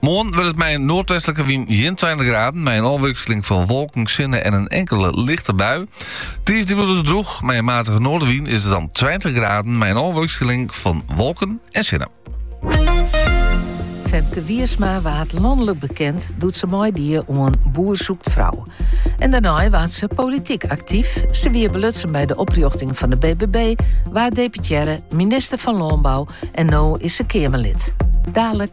Moarn wurdt it mei in noardwestlike wyn gjin 20 graden, mei in ôfwikseling fan wolken, sinne en in inkele lichte bui. Tiisdei is it droech, mei in matige noardwyn is it dan 20 graden, mei in ôfwikseling fan wolken en sinne. Femke Wiersma waard lanlik bekend doe't se meidie oan Boer zoekt vrouw. En dêrnei waard se polityk aktyf. Se wie belutsen by de oprjochting fan de BBB, waard deputearre, minister fan Lânbou en no is se Keamerlid. Dadelijk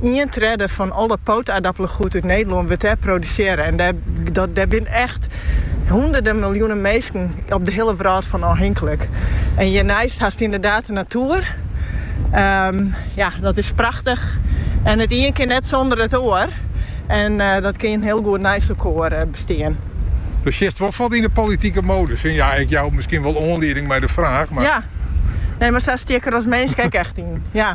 Ien tredde fan alle poataardappelpoatguod út Nederlân wurdt dêr produsearre. En dêr binne echt hûnderden miljoenen minsken op de hiele wrâld fan ôfhinklik. En hjirneist hast ynderdaad de natoer. Ehm, ja, dat is prachtich. En it ien kin net sûnder it oar. En eh, dat kin hiel goed neist elkoar eh, bestean. Do sjochst wol fuort yn de politike modus. En ja, ik jou miskien wol oanlieding mei de vraag, mar... Ja, nee, maar sa stieker als minsk ek echt in. Ja.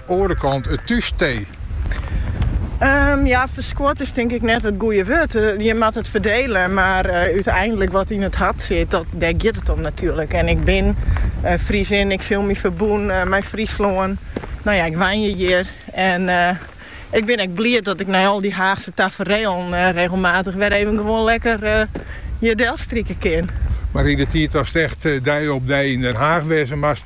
Oare kant it thús tee. Ja, ferskoat is tink ik net it goede wurd. Je moat it ferdele, mar úteinlik wat yn it hart sit, dat, dêr giet it om natuerlik. En ik bin Friesin, ik fiel my ferbûn mei Fryslân. No ja, ik wenje hjir en ik bin ek bliid dat ik nei al dy Haachse taferealen regelmatich wer even gewoan lekker hjir delstrike kin. Mar yn de tiid datst echt dei op dei yn Den Haach wêze moast,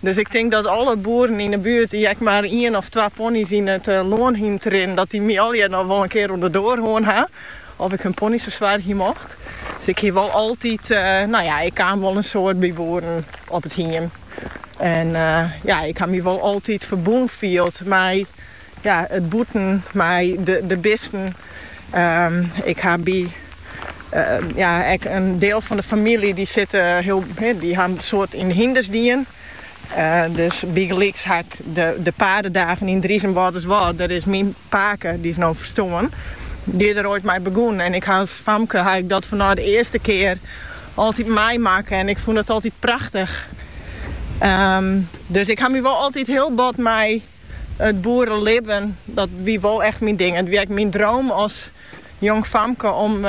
Dus ik tink dat alle boeren yn 'e buert dy't ek mar ien of twa ponies yn it lân hienen te rinnen, dat dy my allegear noch wol in kear oan 'e doar hân ha oft ik hun ponies fersoargje mocht. Dus ik hie wol altyd, no ja, ik kaam wol in soad by boeren op it hiem en ja, ik ha my wol altyd ferbûn field mei. Ja, it bûten mei de bisten. Ik ha by ja, ek in deel fan de famylje dy sitte hiel, dy ha in soad yn de hynders dien. Dus bygelyks ha ik de padedagen yn Driezum Wâlterswâld. Der is myn pake, dy is no ferstoarn, dy is der oait mei begûn. En ik ha as famke ha ik dat fanôf de earste kear altyd meimakke en ik fûn dat altyd prachtich. Dus ik ha my wol altyd hiel bot mei. It boerelibben, dat wie wol echt myn ding. It wie ek myn droom as jong famke om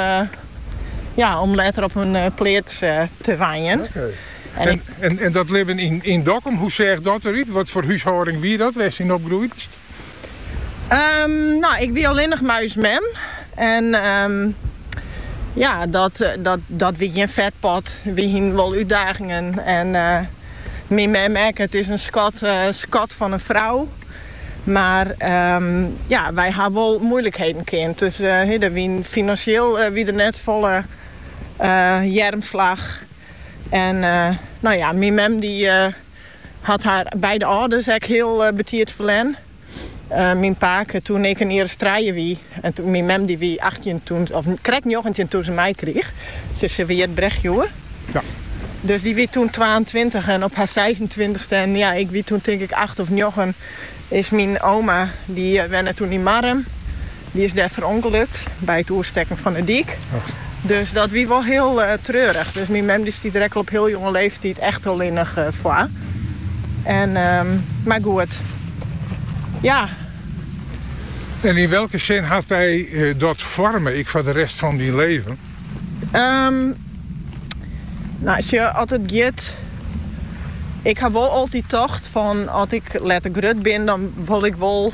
ja, om letter op in pleats te wenjen. En en dat libben yn yn Dokkum, hoe seach dat derút? Wat foar húshâlding wie dat wêrst yn opgroeidst? Nou, ik wie allinnich mei ús mem en ja, dat dat dat wie gjin fetpot. Wy hienen wol útdagingen en. Myn mem ek, it is in skat, uh, skat fan in frou. Mar um, ja, wy ha wol moeilijkheden kend. Dus uh, eh, der wie finansjeel uh, wie der net volle uh, earmslach. En uh, no ja, myn mem dy uh, hat har beide âlders ek hiel uh, betiid ferlern. Myn pake, toen ik in jier as trije wie, en toen myn mem, dy wie achttjin toen, of krekt njoggentjin toen se my krige. Sy se wie hjit Brechtsje. Ja. Dus dy wie toen twaentweintich en op har seisentweintichste, en ja, ik wie toen tink ik acht of njoggen, is myn oma, dy wenne toen yn Marrum, dy is dêr ferûngelokke by it oerstekken fan 'e dyk. Dus dat wie wol hiel treurich. Dus myn mem dy stie der ek al op hiel jonge leeftiid echt allinnich foar. En mar goed, ja. En yn welke sin hat dy dat foarme ek foar de rest fan dyn libben? Nou sjoch, as it, ik haw wol altyd tocht fan as ik letter grut bin dan wol ik wol,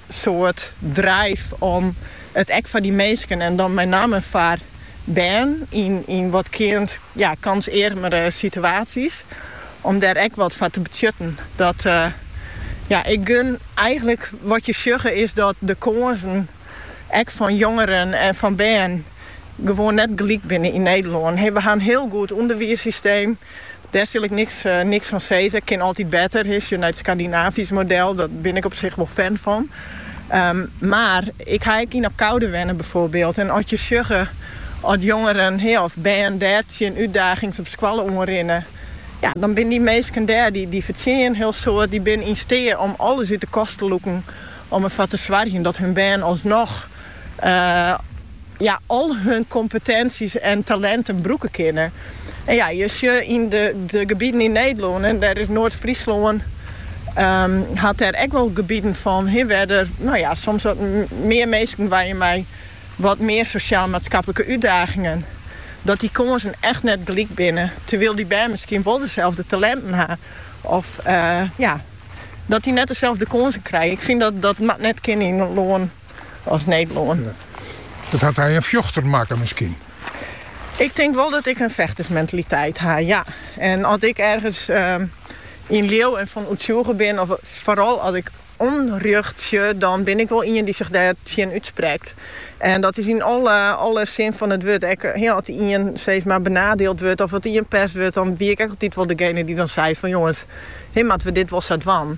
soad drive om it ek foar dy minsken, en dan mei namme foar bern yn wat kâns ja kânsearmere situaties, om dêr ek wat foar te betsjutten. Dat ja ik gun eigenlik wat je sjogge is dat de kânsen ek fan jongeren en fan bern gewoan net gelyk binne yn Nederlân. We ha in hiel goed ûnderwiissysteem. Dêr sil ik niks fan sizze. Kin altyd better. As je nei it Skandinavysk model, dan bin ik op sich wol fan fan. Mar ik ha ek yn Abcoude wenne byfoarbyld en as je sjogge as jongeren of bern dêr tsjin útdagings op skoalle oanrinne, ja, dan binne dy minsken dêr, dy fertsjinje in hiel soad, dy binne yn steat om alles út de kast te lûken om derfoar te soargjen dat hun bern alsnoch ja al hun kompetensjes en talinten brûke kinne. En ja, je sjogge yn de gebieden yn Nederlân, en dêr is Noard-Fryslân hat dêr ek wol gebieden fan hè wêr't der no ja soms wat mear minsken wenje mei wat mear sosjaal-maatskaplike útdagingen, dat dy kânsen echt net gelyk binne, terwyl dy bern miskien wol deselde talinten ha of ja dat dy net deselde kânsen krije. Ik fyn dat dat moat net kinne yn in lân as Nederlân. Dat hat dy in fjochter makke miskien? Ik tink wol dat ik in fechtersmentaliteit ha, ja. En as ik ergens yn leau en fan oertsjûge bin, of foaral as ik ûnrjocht sjoch, dan bin ik wol ien dy't sich dêr tsjin útsprekt. En dat is yn alle sin fan it wurd. Ek as ien steeds mar benadeeld wurdt of as ien pest wurdt, dan wie ik ek altyd wol degene dy't dan seit fan jonges, hee, moatte we dit wol sa dwaan.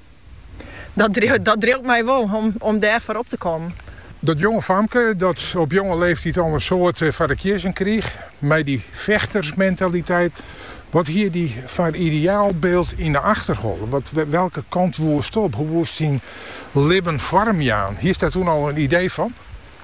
Dat driuwt my wol om dêr foar op te kommen. Dat jonge famke dat op jonge leeftyd al in soad foar de kiezzen krige mei dy fechtersmentaliteit, wat hie dy foar ideaalbyld yn de achterholle? Welke kant woest op? Hoe woest dyn libben foarmjaan? Hiest dêr toen al in idee fan?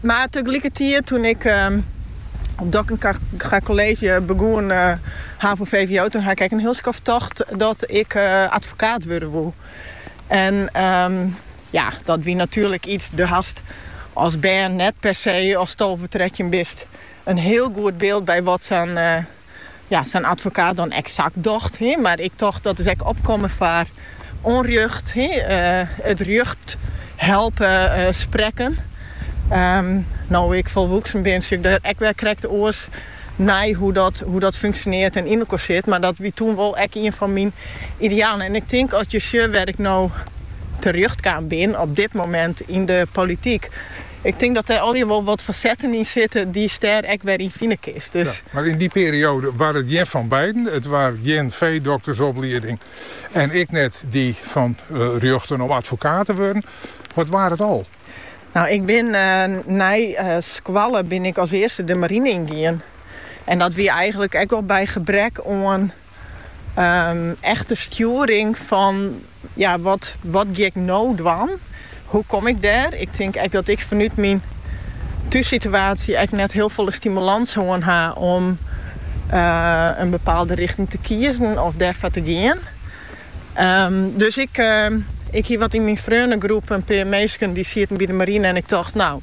Mar teglikkertiid, toen ik op Dokkenga College begûn ha voor VWO, toen ha 'k ek in hiel skoft tocht dat ik advokaat wurde woe. En ja, dat wie natuerlik iets, de hast als bern net per se, ast tolve, trettjin bist, in hiel goed beeld by wat sa'n ja, sa'n advokaat dan eksakt docht. He, mar ik tocht dat is ek opkommen foar onrjocht, he, eh, it rjocht helpe eh, sprekken. Ehm, no ik folwoeksen bin, sjoch ik der ek wer krekt oars nei hoe dat, hoe dat funksjoneert en yn elkoar sit. Maar dat wie toen wol ek ien fan myn idealen. En ik tink als je sjocht wêr ik no terjocht kaam bin op dit moment in de politiek, Ik tink dat dêr allegear wol wat fasetten yn sitte dy'tst dêr ek wer yn fine kinst. Ja, mar yn dy perioade waard it gjin fan beiden. It waard gjin feedoktersoplieding en ek net dy fan rjochten om advokaat te wurden. Wat waard it al? No, ik bin nei skoalle bin ik as earste de marine yn gien. En dat wie eigenlik ek wol by gebrek oan Echte stjoering fan ja wat wat gean ik no dwaan? Hoe kom ik dêr? Ik tink ek dat ik fanút myn thússituaasje ek net hiel folle stimulans hân ha om in bepaalde richting te kiezen of dêrfoar te gean. Dus ik ik hie wat yn myn freonnegroep in pear minsken dy't sieten by de marine en ik tocht no